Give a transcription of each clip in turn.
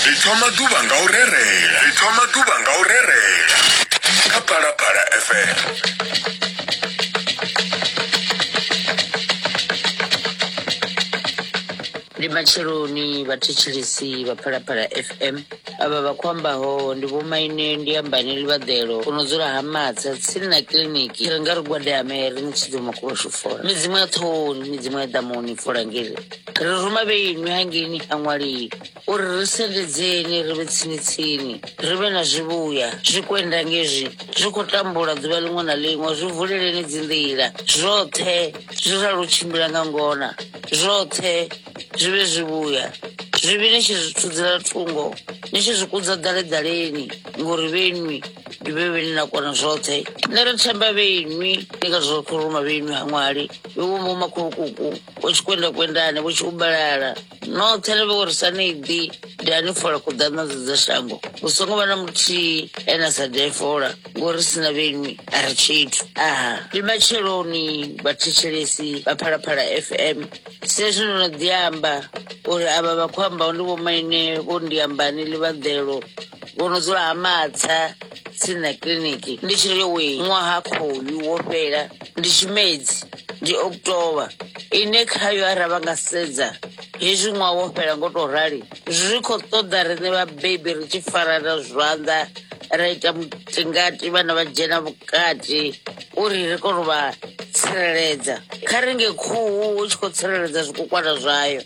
ri thoma ḓuvha nga u rerela ri thoma ḓuvha nga u rerela kha phalaphala fm ndi matsheloni vhathetshelesi vha phalaphala fm avha vha khou ambaho ndi vhomaine ndi ambani livhaḓelo u no dzula ha matsa tsini na kiḽiniki ri nga ri gwadame ri ni tshidzoma kuvhashu fola midzimu ya ṱhohoni midzimu ya ḓamuni fola ngiri ri ruma vheinwi hangeini kha ṅwaliyi uri ri sendedzeni ri vhe tsini-tsini ri vhe na zwivhuya zwikwenda ngezwi zwi khou tambula ḓuvha ḽiṅwe na ḽiṅwe zwi vuleleni dzinḓila zwoṱhe zwi ralo tshimbila nga ngona zwoṱhe zwi vhe zwivhuya zwivhi ni tshi zwi thudzela thungo ni tshi zwi kudza ḓaleḓaleni ngori vheinwi ndi vhe vheni na kona zwoṱhe nṋe ri themba vheinwi ndi nga zwoṱhe ruma vheinwi ha ṅwali vhe wo mbo makhulukuku vho tshi kwenda kwendani vho tshi ubalala noṱhe ni vhe uri sa ni ḓi da ni fola kuḓaṋadzo dza shango hu songo vha na muthihi ene a sa ḓe fola ngori sina vhenwi a ri tshithu aha ndi matsheloni vhathetshelesi vha phalaphala fm sezwi ndo no ḓi amba uri avha vha khou ambaho ndi vhomaine vho ndiambani ḽivhaḓelo vho no dzula ha matsa tsini na kiḽiniki ndi tshiri yowe ṅwaha khoyu wo fhela ndi tshimedzi ndi october ine khayo ara vha nga sedza hezwi ṅwaha wo fhela ngo to rali zwi khou ṱoḓa riṋe vhabebi ri tshi farana zwanḓa ra ita mutingati vhana vha dzhena vhukati uri ri kone u vha tsireledza kha ringe khuhu hu tshi khou tsireledza zwikukwana zwayo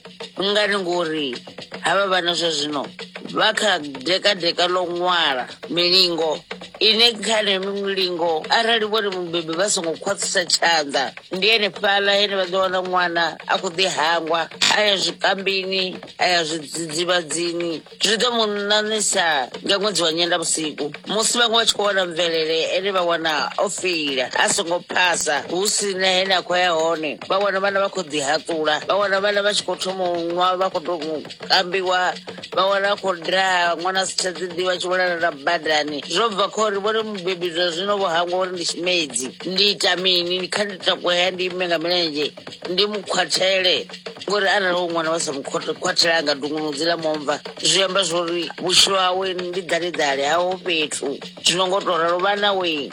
ngani ngori havha vhana zwa zwino vha kha dekadeka ḽo ṅwala milingo ine kha nemi milingo arali vhone mubebi vha songo khwaṱhisa tshanḓa ndi ene fhaḽa ene vha ḓo wana ṅwana a khou ḓi hangwa a ya zwikambini a ya zwidzidzivhadzini zwi ḓo mu ṋaṋisa nga ṅwedzi wa nyendavhusiku musi vhaṅwe vha tshi khou wana mvelele ene vha wana o feila a songo phasa hu si na hene a khou ya hone vha wana vhana vha khou ḓihaṱula vha wana vhana vha tshi khou thoma u nwa vha khou tou kambiwa vha wana a khou daha ṅwana a si tsha ḓiḓivha tshi vhulala na badani zwo bva kha uri vhone mubebi zwa zwino vho hangwa uri ndi tshimedzi ndi ita mini kha ndi takuhea ndi ime nga milenzhe ndi mu khwathele ngori arali wo ṅwana vha sa mu khot- khwathela a nga dungunudzi ḽa momva zwi amba zwori vhutshilo hawe ndi ḓaleḓale haho fhethu zwino ngo to ralo vhana we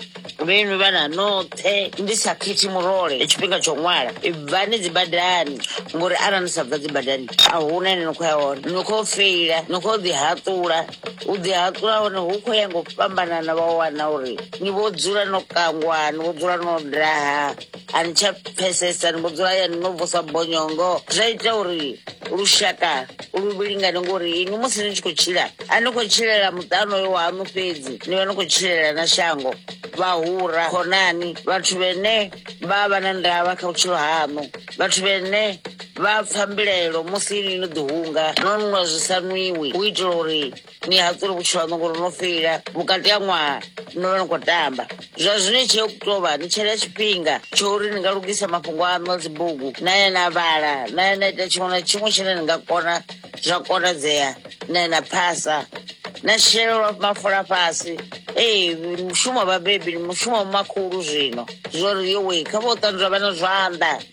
vhenwi vhana noṱhe ndi sa khethi murole tshifhinga tsho ṅwala bvani dzi badani ngori arali ni sa bva dzi badani a huna ine ni khou ya hone ni khou feila ni khou ḓi haṱula u ḓi haṱula hone hu khou ya ngo fhambanana vha wana uri ni vho dzula no kangwa ni vho dzula no daha a ni tsha pfesesa ni vho dzula hayani no vusa bonyongo zwa ita uri lushaka lu vhilingane ngori inwi musi ni tshi khou tshila a ni khou tshilela muṱano yo wahaṋu fhedzi ni vha ni khou tshilela na shango vhahura khonani vhathu vhene vha vha na ndavha kha vhutshilo haṋu vhathu vhene vha pfa mbilaelo musi ni no ḓihunga no nwa zwi sa nwiwi u itela uri ni a tsuri vhutshilo haṋu ngori no feila vhukati ha ṅwaha no vha ni khou tamba zwa zwino i tsheo tou vha ni tshela tshifhinga tsho uri ni nga lugisa mafhungo aṋu a dzibugu na ya na vhala na ya na ita tshiṅwe na tshiṅwe tshine ni nga kona zwa konadzea na ya na phasa na shelelwa mafola fhasi ee mushumo wa vhabebi ndi mushumo wa makhulu zwino zwori yowe kha vho ṱanzwa vhana zwanḓa